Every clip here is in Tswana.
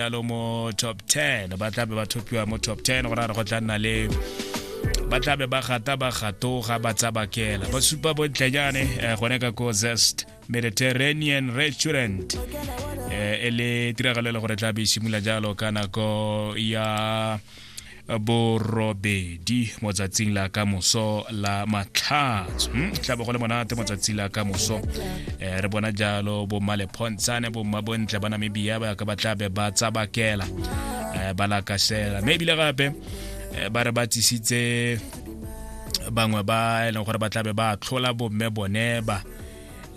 jalo mo top 10 ba tlabe ba thopiwa mo top 10 go rara go tla nna le ba tlabe ba gata ba gatoga ba tsabakela ba supa bontlenyane eh, gone ka ko zest mediterranean restaurant eh, e le tiragalo e le gore tlabe e simula jalo ka nako ya borobedi mo tsatsing la ka moso la matlhatso hmm, tla bo go le monate mo tsatsing la ka moso eh, re bona jalo bomma lephontshane bomma bontle ba namibia ba ka ba tla be ba tsabakela eh, ba lakasela mme ebile gape eh, ba re ba tsisitse bangwe ba e leng gore ba tlabe ba tlhola bomme bone ba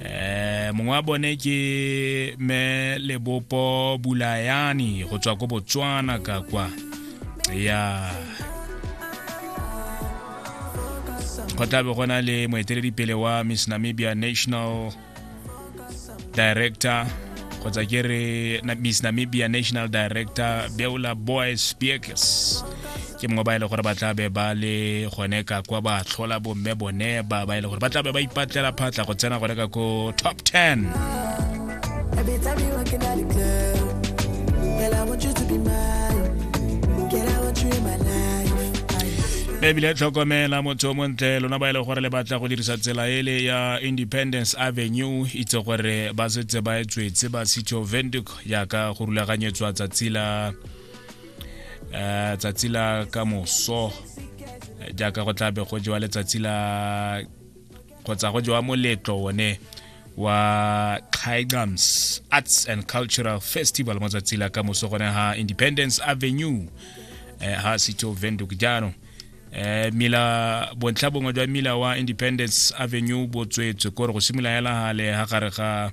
eh mongwe wa bone ke me lebopo bulayani go tswa ko botswana ka kwa ya go tlabe go na le moeteledipele wa miss namibia national director kgotsa ke re miss namibia national director beula boys speakers ke mongwe ba e le gore ba tlabe ba le gone ka kwa ba tlhola bomme bone ba ba e le gore ba tlabe ba ipatlela phatla go tsena gone ka ko top 10 ebile tlhokomela motho o montle lona ba e le gore le batla go dirisa tsela ele ya independence avenue itse gore ba setse ba e tswetse ba city of venduc yaka go rulaganyetswa tsatsi la eh, tsatsi la ka moso eh, jaaka go tlabe go jewa letsatsi la kgotsa go jewa moletlo one wa Khaigams Arts and Cultural Festival mo tsatsi la ka moso gone ha Independence Avenue eh, ha Sito Venduk jaanong eh mila bontlha bongwe jwa mila wa independence avenue bo tswetswe kore go simolola hela gale ga gare ga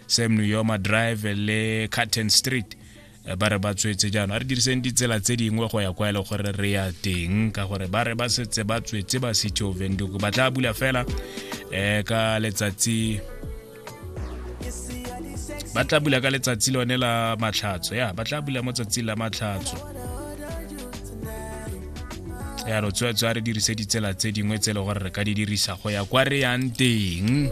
sam new yoma drive le carton street ba re ba tswetse jaanong a re diriseng ditsela tse dingwe go ya kwa e le gore re ya teng ka gore ba re ba setse ba tswetse ba city of venduku ba tla bula fela um ka letsatsi ba tla bula ka letsatsi lone la matlhatso ya ba tla bula mo tsatsing la matlhatso ya re tswetswe a re dirise ditsela tse dingwe tse e le gore re ka di dirisa go ya kwa re yang teng